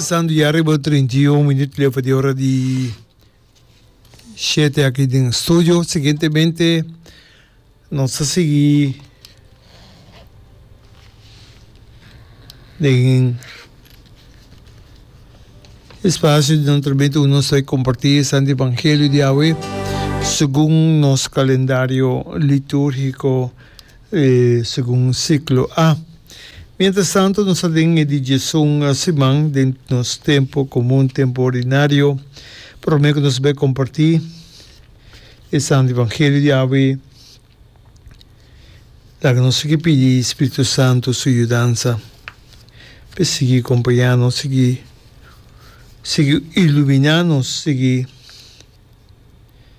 Santo ya riba e treinta i un minuut leu pa di ora di shete aki den studio. Siguientemente nos ta sigui den e spasio di nan entremento ku nos ta komparti e Santo Evangelio di awe segun nos kalendario liturgiko. E segun siklo a. Mientrastantu nos ta den e dijesun siman den nos tempu komun, tempu ordinario. Promé ku nos bai kompartí e Santu Evangelio di awe, laga nos sigui pidi Spiritu Santu su yudansa pa e sigui kompañá nos, sigui sigui iluminá nos, sigui.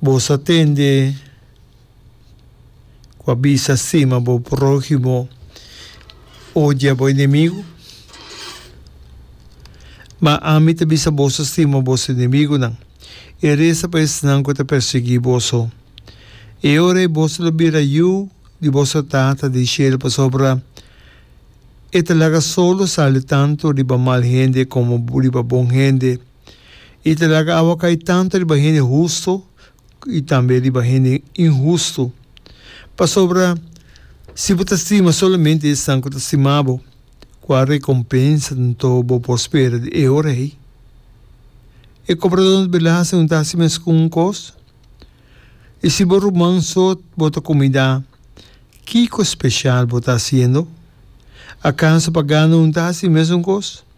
Bo sa tende ku a bisa stima bo próhimo, odia bo enemigu? Ma ami ta bisa boso stima boso enemigunan, i resa pa esnan ku ta persiguí boso. E ora ei boso lo bira yu di boso Tata den shelu pasobra e ta laga solo sali tantu riba mal hende komo riba bon hende. I ta laga awa kai tantu riba hende hustu i tambe riba hende inhustu. Pasobra si bo ta stima solamente esnan ku ta stima bo, kua rekompensa anto bo por spera di e ora ei? E kobradónan di belasting no ta hasi mes ku un kos? I si bo ruman so bo ta kumidá, kiko speshal bo ta hasiendo? Akaso pa gana no ta hasi mesun kos?